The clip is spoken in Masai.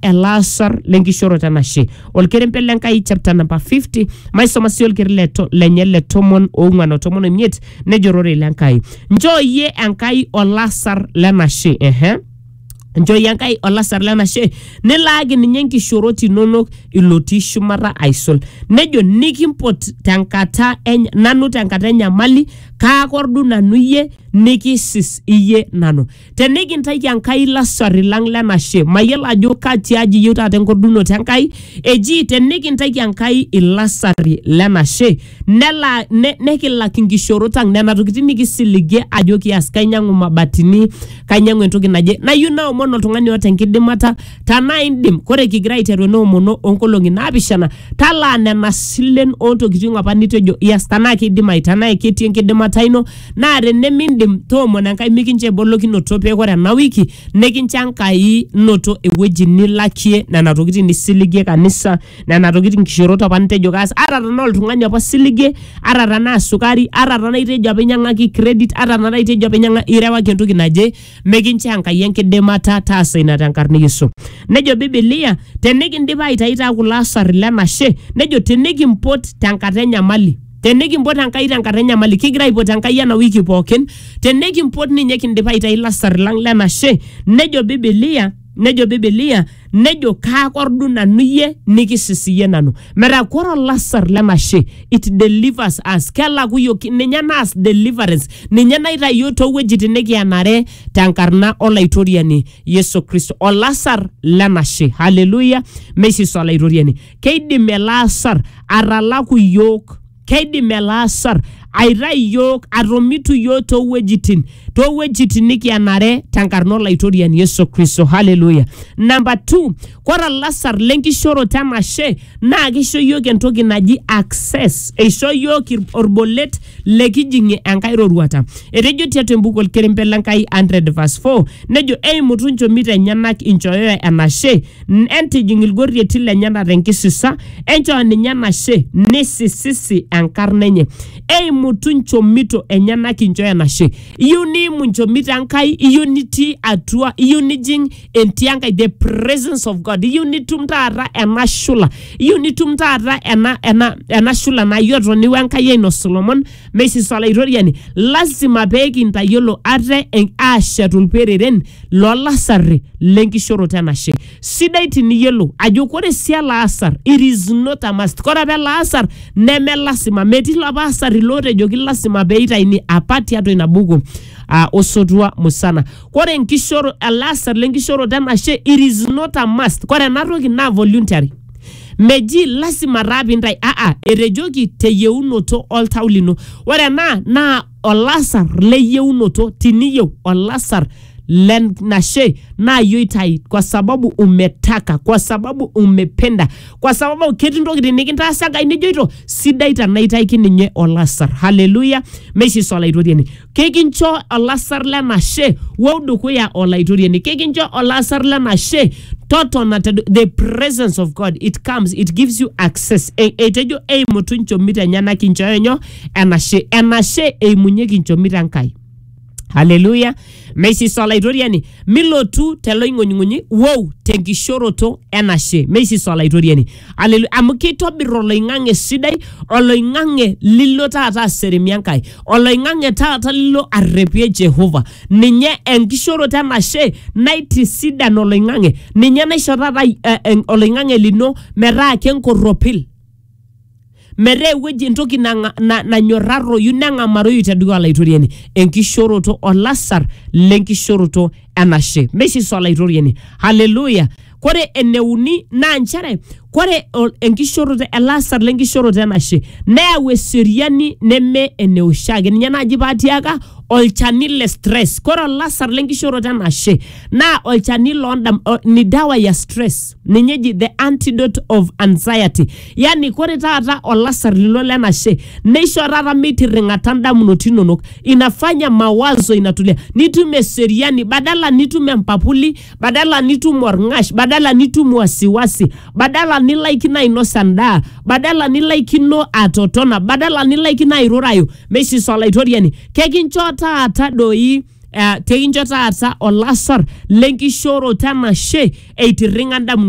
elaasar lenkishooroto enashe olkerempe le Nkai chapter number 50 maisoma sii olkeri le to- lenye le tomon oong'uan o tomon oimiet nejo ororei le Nkai nchoo iyie Enkai olasar lenashe ehe nchooyie Enkai olasar lenashe nilaaki ninye inkishoorot inonok ilotii shumata aisul nejo nikimpot tenkata eny- nanu tenkata enyamali kaakordu nanu iyie nikisis iyie nanu tenikintaiki Enkai ilasarri lang lenashe mayiolo ajo katiaji iyieu taata enkordunoto Enkai eji tenikintaiki Enkai ilasarri lenashe nela ne, nekilak inkishorot ang nena tokitin nikisiligie ajo kias kainyiang'u mabatini kainyiang'u entoki naje nayieu naomon oltung'ani oota enkidimata tanaa indim kore kigira aiteru ena omono onkolong'i naapishana talaa nena silen ontokiting apa nitejo ias tanaa kidimayu tanaa ketii enkidimata ino Naa tenemindim, toomono Enkai mikincho ebolokinoto pee ore ena wiki nikincho Enkai noto ewueji nilakie nena tokitin nisiligie kanisa, nena tokitin nkishorot apa nitejo kaas. Ata tenaa oltung'ani apa osiligie, ata tenaa sukari, ata tenaa itejo apa inyang'aki credit, ata tenaa itejo apa inyang'a irewaki entoki naje, mikincho Enkai enkidimata taasa ina tenkarna e Yesu. Nejo bibilia tenikindip aitayu taa kulo asarri le nashe, nejo tenikimpot tenkata enyamali. tenikimpot Enkai tenkata enyamali, kigira aipot Enkai ena wiki pookin, tenikimpot ninye kindipa aitayu ilasar lang lenashe, nejo Bibilia, nejo Bibilia, nejo kaakordu nanu iyie nikisis iyie nanu. Metaa kore olasar lenashe it delivers us, kelaku iyiok, ninye naas deliverance, ninye naitayu iyiok toowuejitin nikienare tenkarna Olaitoriani Yesu Kristo. Olasar lenashe, hallelujah, meisis Olaitoriani. keidim ele asar atalaku iyiook, keidim ele asar aitai iyiook, atomitu iyiook too wuejitin too wuejitin nikianare tenkarna olaitoriani Yesu Kristo. Haleluya. Namba two, ore olasar le nkishooroto enashe naa kisho iyiook entoki naji access, eisho iyiook ir- olbolet likijing'ie enkae roruata. Etejo tiatua embuku olkerempe le Nkai 100 verse 4 nejo eimutu nchomito enyenak inchooyoyo enashe N- entijing ilgorrieti lenyena tenkisisa enchoo ninye enashe nisisisi enkarna enye eimutu nchomito enyenak inchoo enashe iyieu niimu nchomito enkai iyieu nitii atua iyieu nijing entii enkai the presence of god iyieu nitum taata ena shula iyieu nitum taata ena, ena, ena shula nayiotoni wenkai ainosu lomon Meisis Olaitoriani, lasima pee kintayiolo ate en- aashetu ilpereren loo lasarri le nkishoroto enashe. Sidai tiniyiolou ajo kore sii ele asar it is not a must. Kore apa ele asar neme lasima, metii ilapa asarri lootejoki lasima pee eitayuni apa tiatua ina buku ah, Osotua Musana. Kore enkishoro, ele asar le nkishoroto enashe it is not a must. Kore ena toki naa voluntary. meji lasima taa pintai aa etejoki teyieunoto oltau lino ore ena naa olasar leyieunoto tiniyieu olasar lenashe naa yie oitai kwa sababu umetaka kwa sababu umependa kwa sababu ketii ntokitin nikintaasa enkai nijoito sidai tanaitai kininye olasar haleluya meishiso olaitoriani kekincho olasar lenashe wou dukuya olaitoriani kekincho olasar lenashe totona te the presence of god it comes it gives you access E- etejo eimutu nchomit enyenak inchooyo nyoo enashe enashe eimunyeki nchomit enkai haleluya meisisa olaitoriani milotu teloing'unying'unyi wou tenkishoroto enashe meisisa olaitoriani Alelu- amu keitobir oloing'ang'e sidai oloing'ang'e lilo taata aseremie enkai oloing'ang'e taata lilo arrepie jehova ninye enkishoroto enashe naitisidan oloing'ang'e ninye naisho taata eh, en- oloing'ang'e lino metaa kenkorropil metaa ewueji entoki nang'a- na- nanyorraroyu neng'amaroyu te dukuya olaitoriani enkishoroto olasar lenkishoroto enashe meishiso olaitoriani haleluya kore eneuni naa nchere kore ol- enkishoroto elasar lenkishoroto enashe neyau eseriani neme eneoshiake ninye naaji paatiaka olchani le stress kore olasar lenkishoroto enashe naa olchani londam- o- ni dawa ya stress ninye eji the antidote of anxiety yani kore taata olasar lino lenashe neisho taata meitirring'ata ndamunot inonok inafanya mawazo inatulia nitum eseriani badala nitum empapuli badala nitum orng'ash badala nitum wasiwasi badala nilaikino ainosa ndaa badala nilaikino atotona badala nilaikino airurayu meishiso olaitoriani kekincho taata doi eh, teikincho taata olasar lenkishooroto enashe eitirring'a indamunot